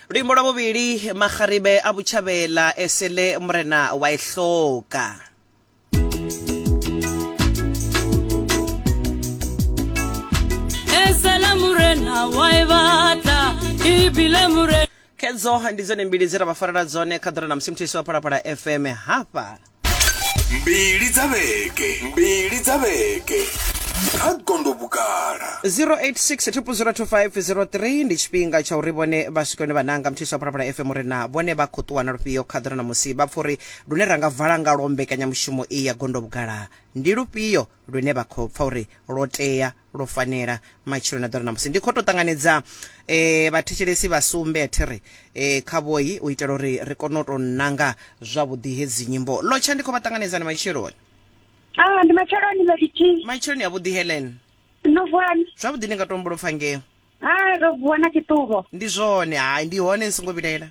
luimbo lwa bobili magaribe a botšhabela esele morena wa e hloka esele morena wa e batla ebile morena khedzo ndi dzone mbili dze ra vha farela dzone kha ḓora na musi muthiso wa phalaphala fm hafha mbili dza vhege mbili dza vhege kha gondo vhugala 0860202503 ndi tshifhinga tsha uri vhone vha swike hune vhananga mthisa phalaphala fm uri na vhone vha khou ṱuwa na lufhio kha ḓira na musi vha pfa uri lune ra nga vala ngalwo mbekanyamushumo iyi ya gondo vhugala ndi lufhio lune vha khou pfa uri lwo tea lwo fanela matshilo na ḓora ṋamusi. Ndi khou tou ṱanganedza vhathetshelesi vha sumbe thi ri kha vhoi u itela uri ri kone u tou nanga zwavhuḓi hedzi nyimbo. Lotsha ndi khou vha ṱanganedza ndi matsheloni. Ah, ndi matsheloni Melody. Matsheloni a vhuḓi Helen. No vuwani? Zwavhuḓi ndi nga tou humbula u pfa ngeo. Hai, ro vuwa na tshiṱuvho. Ndi zwone, hai, ndi hone ni songo vhilaela.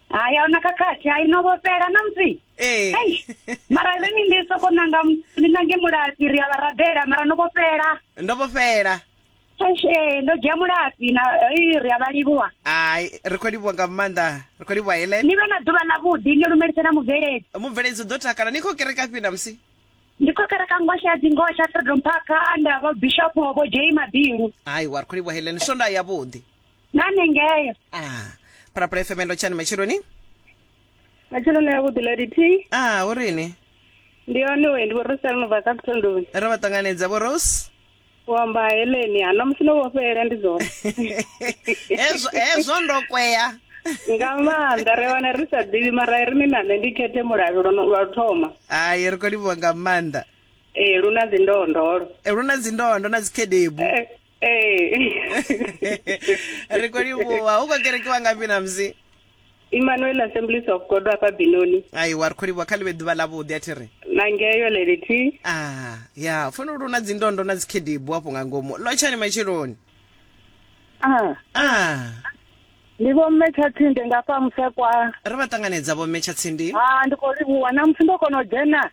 Hai, a hu na khakhathi, hai, no vhofhela na musi. Ee. Hei, mara ri ni ndi soko nanga ni nange mulapi ri a vha rabela mara no vhofhela. Ndo vhofhela. Eish, ee, ndo dzhia mulapi na ii, ri a vha livhuwa. Hai, ri khou livhuwa nga maanḓa, ri khou livhuwa Helen. Ni vhe na ḓuvha ḽavhuḓi ni lumelise na mubveledzi. Mubveledzi u ḓo takala. Ni khou kerekafhi ṋamusi? ndi khou kereka ngoxe ya dzingoho tsha freedom park anda vho bishop vho jei mabilu hayi wa ri khou livhuhela ni swondaha yavhuḓi na ningeyo ah phalaphala fm ndo tshani matshiloni matsheloni avhuḓi lady t ah hu rini ndi yone we ndi vho rosel no bva kapitondoni ro vha ṱanganedza vho rose u amba heleni ha ṋamusi no vhofhela ndi zwone hezwo hezwo ndo kwea nga maanḓa ri wana ri sa ḓivhi mara ri ni na nṋe ndi khethe mulavhi lwa lwa u thoma hai ri khou livhuwa nga maanḓa ee lu na dzindondolo Eh, lu na dzindondo na dzikhedebu Eh, ee ri khou livhuwa u khou kerekiwa ngafhi na musi Emmanuel Assemblies of God wa fha Binoni. Ai wa ri kho livhuwa kha ḽivhe ḓuvha ḽa vhuḓi a thi ri. Na ngeyo lady T. Ah ya funa lu na dzindondo na dzikhedibu afho nga ngomu lotshani matshiloni. Ah. Ah. Ndi vho mme Tshatsinde nga fha Musekwa. Ri vha ṱanganedza vho mme Tshatsindi. Ah ndi kho livhuwa na musi ndo kono dzhena.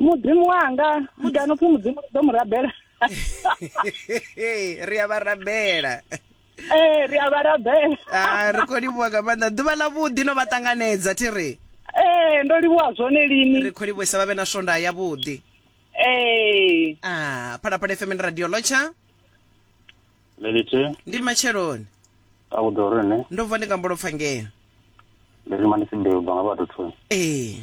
mudzimu wanga kana upfhi mudzimu ri ḓo mu rabela ri a vha rabela ee eh, ri a vha rabela ah, ri khou livhuwa nga maanḓa ḓuvha ḽa vhuḓi no vha ṱanganedza thi ri ee eh, ndo livhuwa zwone lini ri khou livhuisa vha vhe na swonda ya vhuḓi ee eh. a ah, phalaphala fm ndi radio lotsha lelithe ndi matsheloni a ku ḓo rine ndo vuwa ndi nga mbolo pfa ngeno ndi rima ndi si mbeu banga vhathu thuni ee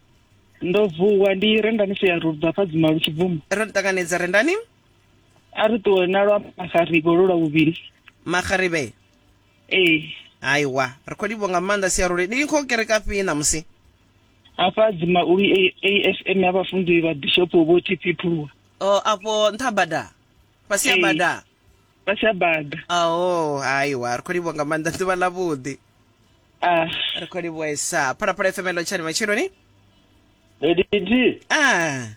ndo vuwa ndi rendani si ya rubva fa dzima lu tshi bvuma ro ni ṱanganedza rendani a ri ṱuwe na lwa magarivhe lu lwa vhuvhili magarivhe ee haiwa ri khou livho nga maanḓa siarule ni khou kereka fhi ṋamusi hafha dzima ulu asm ya vhafunzi vha bishopo vho tp phuluwa o afho nṱha bada fhasi ya Ee. bada vha tsha bada ao haiwa ri khou livhuwa nga maanḓa ḓuvha ḽa vhuḓi ah ri khou livhuesa phalaphala fm elo tshani matsheloni Editi, a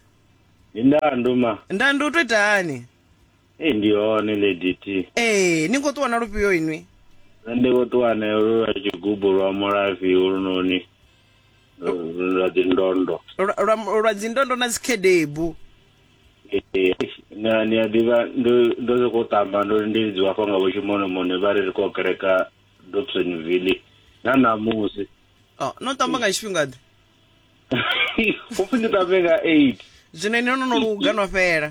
ndi ndandu ma. nda ndi u to itani Ei ndi hone Lady T. ee ni khou ṱuwa na lufhio inwi Nṋe ndi khou ṱuwa nayo lu lwa tshigubu lwa mulafhi holunoni lu- lu lwa dzi ndondo. lwa- lwa lwa dzindondo na dzikhedebu Ee, ni a- ni a ḓivha ndo ndo sokou tamba ndo ri ndi lidziwa hafha nga vhotshimonomone vha ri ri khou kereka dobsonville na ṋamusi Oh, no tamba nga tshifhinga ḓe hupfi ndi tambe nga eight zwino ene no no luga no fhela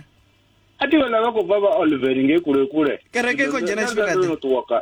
a thi vhala vha khou bva vha oliveri ngei kule kule Kereke i khou dzhena tshifhinga ḓe? no ṱuwa ka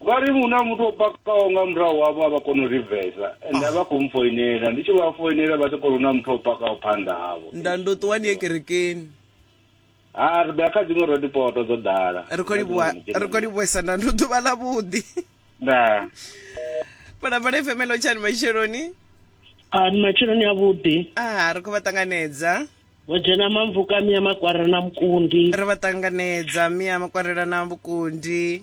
Vha ri hu na muthu o pakaho nga murahu havho a vha koni u rivesa ende a vha khou mpfoinela ndi tshi vha foinela vha tshi khou ri hu na muthu o pakaho phanḓa havho nda ndo ṱuwa ni ye kerekeni ha ri ḓo ya kha dziṅwe road poto dzo ḓala ri khou livhuwa ri khou livhuwesa nda ndo ḓuvha ḽa vhuḓi nda phalaphala fm lo tshani matsheloni Ah, ni matsheloni avhuḓi a ri khou vha ṱanganedza vho dzhena mamvuka mia makwarela na mukundi ri vha ṱanganedza mia makwarela na vhukundi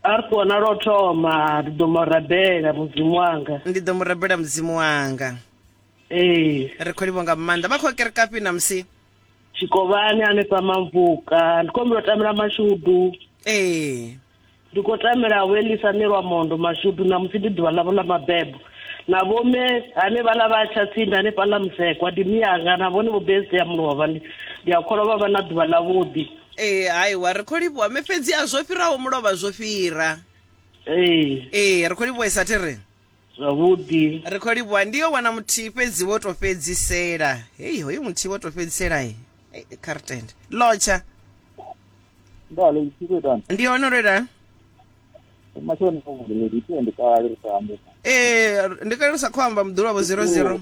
a ri kona lwo thoma ndi ḓo mu rabela mudzimu wanga ndi ḓo mu rabela mudzimu wanga ee ri khou livho nga maanḓa vha khou kerekafhi na musi tshikovhani hanefha mamvuka ndi khou mbilo tamela mashudu ee ndi khou tamela welisa ni lwa mondo mashudu na musi ndi ḓuvha ḽavho ḽa mabebo na vhome hanevha ḽa vha tsha tsindi hanefha ḽa musekwa ndi miyanga na vhone vho bese ya mulovha ndi a kholwa vha vha na ḓuvha ḽavhuḓi ee haiwa ri khou livhuwa me fhedzi a zwo fhiraho mulovha zwo fhira ee ee ri khou livhuwesa thi ri zwavhuḓi ri khou livhuwa ndi yo wana muthihi fhedzi wo to fhedzisela hei hoyu muthihi wo to fhedzisela e cartend lotsha ndale isiku itani ndi hone lwo itani mashoni avhuḓi ni ḓitende kale ri sa ambe ee ndi kale ri sa khou amba muḓulwa vho zero zero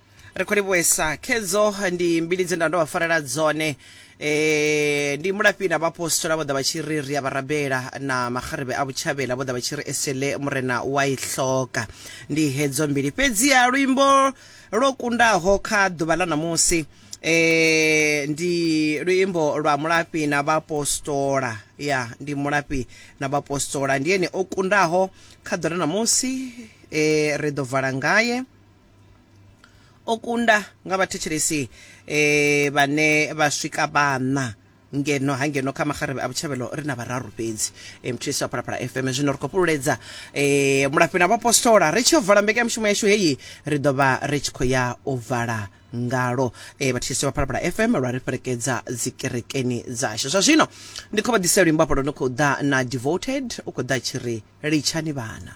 ri khou livhuwesa khedzo ndi mbili dze nda ndo vha farela dzone eh ndi mulafhi na vhaapostola vho ḓa vha tshi ri ri a vha rabela na makgarebe a vhutshavhela vho ḓa vha tshi ri esele murena wa i hloka ndi hedzo mbili fhedziha luimbo lwo kundaho kha ḓuvha ḽa ṋamusi eh ndi luimbo lwa mulafhi na vhaapostola ya ndi mulafhi na vhaapostola ndi ene o kundaho kha ḓuvha ḽa ṋamusi eh ri ḓo vala ngaye o kunda nga vhathetshelesi eh, vhane vha swika vhaṋa ngeno ha ngeno kha magarebe a vhutshavhelo ri na vhararu fhedzi eh, mthulisi wa phalaphala fm zwino ri khou fhululedza eh, mulafhi na vhapostola ri tshi yo vala mbekanyamushumo yashu heyi ri ḓo vha ri tshi khou ya u vala ngalo eh, vhathetshelesi vha phalaphala fm lwa ri fhelekedza dzikerekeni dzashu zwa zwino ndi khou vha ḓisa luimbo afho lwo no khou ḓa na devoted u khou ḓa tshi ri litshani vhana